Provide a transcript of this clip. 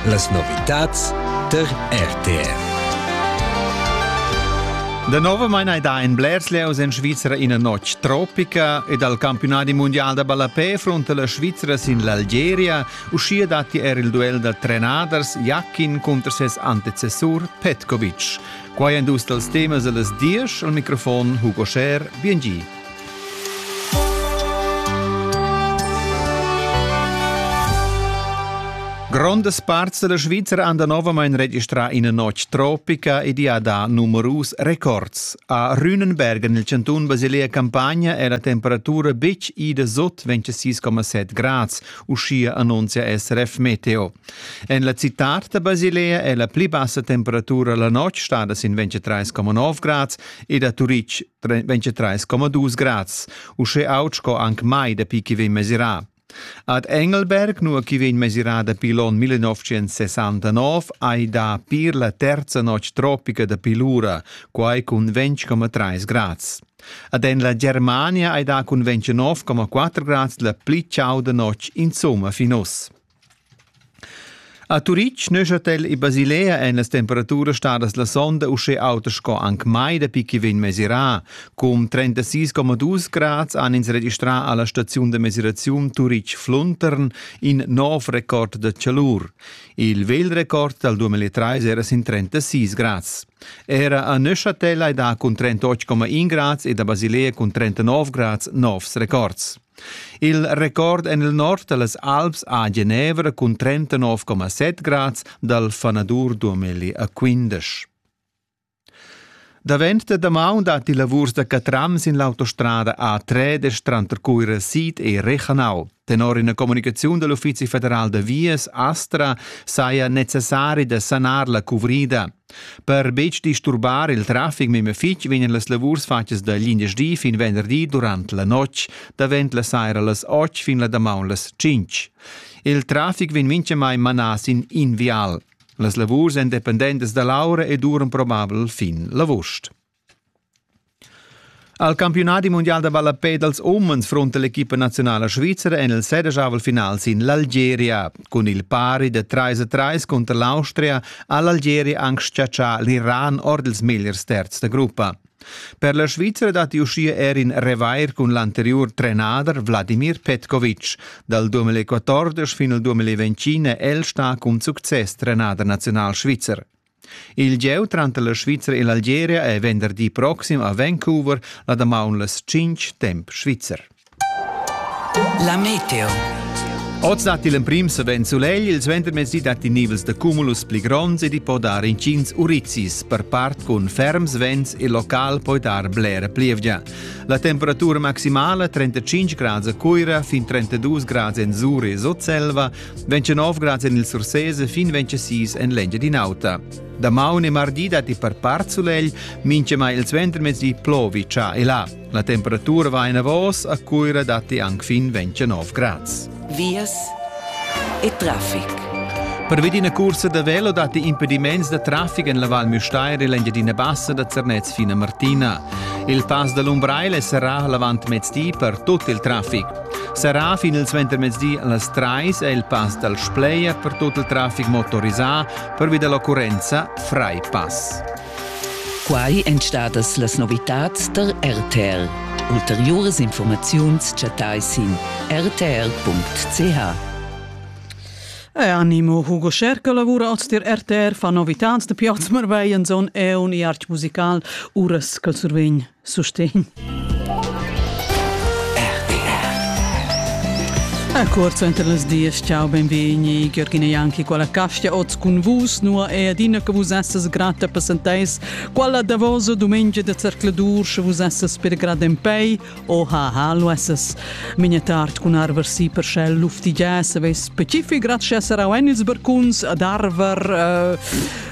Las novitads tar RTV. Da nova maina da in blers leos en Svizra ina notg tropica e dal campionadi mondial da ballapè fronta la Svizra sin l'Algeria. Uschia datti er il duell da trenaders Jakin cunter ses antecessur Petkovic. Quai èn dus dals temas a las diesch. Al microfon Hugo Scher, biengi. Grondas parts della Svizra han danovamain registrà ina notg tropica ed ha dà numerus records. A Rühnenberg nel cantun Basilea Campagna è la temperatura betg ida sot 26,7 grads, uschia annunzia SRF Meteo. En la città da Basilea è la pli bassa temperatura la notg stada sin 23,9 grads ed a Turitg 23,2 grads, usche aut sco anc mai dapi chi vegn mesirà. Ad Engelberg, nua chi vegn mesirà dapi l'on 1969, hai da pir la terza notg tropica dapi l'ura, quai cun 20,3 grads. Ad en la Germania hai da cun 29,4 grads la pli chauda notg insomma fin uss. A Turitg Neuchâtel e Basilea èn las temperaturas stadas la sonda uschè autas sco anc mai dapi ch'i vegn mesirà. Cun 36,2 grads han ins registrà a la staziun da mesiraziun Turitg-Fluntern in nov record da chalur. Il vegl record dal 2003 era sin 36 grads. Era a Neuchâtel hai dà cun 38,1 grads ed a Basilea cun 39 grads novs records. Il record en il nord da las Alps a Genevra cun 39,7 grads dal fanadur 2015. Davent da damaun datti lavurs da catrams in l'autostrada A3 tranter Cuira Sid e Rechanau. Tenor ina comunicaziun dell'Uffizi federal da vias Astra saja necessari da sanar la cuvrida. Per betg disturbar il traffic memia fitg vegnan las lavurs fatgas da glindesdi fin venderdi durant la notg, davent la saira las 8 fin la damaun las 5. Il traffic vegn mintgamai manà sin in vial. Las lavurs èn dependentas da l'aura e duran probabel fin l'avust. Al campiunadi mundial da ballapè dals umens frunta l'equipa naziunala svizra en il sedeschavel final sin l'Algeria. Cun il pari da 3-3 cunter l'Austria ha l'Algeria anc schiaccià l'Iran ord ils megliers terzs da gruppa. Per la Svizra datti uschia er in revair cun l'anteriur trenader Vladimir Petkovic. Dal 2014 fin al 2020 è el stà cun success trenader nazional svizzer. Il gieu tranter la Svizra e l'Algeria è venderdi proxim a Vancouver la damaun las 5 temp svizzer. La meteo. Oz datti l'emprim savens sulegl, il suentermezdi datti nivels da cumulus pli gronds ed i po dar intgins urizis, per part cun ferms vents e local poi dar blera plievgia. La temperatura maximala 35 grads a Cuira, fin 32 grads en Zuri e Sotselva, 29 grads en il Sursese fin 26 en l'Engiadin'Auta. Damaun e mardi datti per part sulegl, minchemai il ventermezdi plovi già e là. La temperatura va enavos, a Cuira datti anche fin 29 grads. Vias e traffic. Per vedina cursa da velo datti impediments da traffic en la Val Müstair e l'Engiadina Bassa da Zernez fino a Martina. Il pass da l'Umbrail è serrà l'avant mezdi per tutto il traffic. Serrà fin il suentermezdi las trais è il pass dal Spleia per tut il traffic motorisà pervi da l'occurrenza Freipass. Quai èn stadas las novitads tar RTL. Ulteriuras informaziuns chattai sin rtl.ch. Animo Hugo Scherker lavura oz dir RTR fa novitads da Piazmar bei en zon e un i arch musical uras col survegn. Sustegn. A corso entre les dies, ciao, benvegni, Gheorghina Ianchi, quella castia oz cun vus, nua è adina che vus essas grata presentais, quella davosa domenica de cercladur, sche vus essas per grad en pei, o ha ha, lo essas. Migna tard cun arversi per schel luftigias, aveis specific grazie a Sarau en ils barcuns, ad Arver, uh,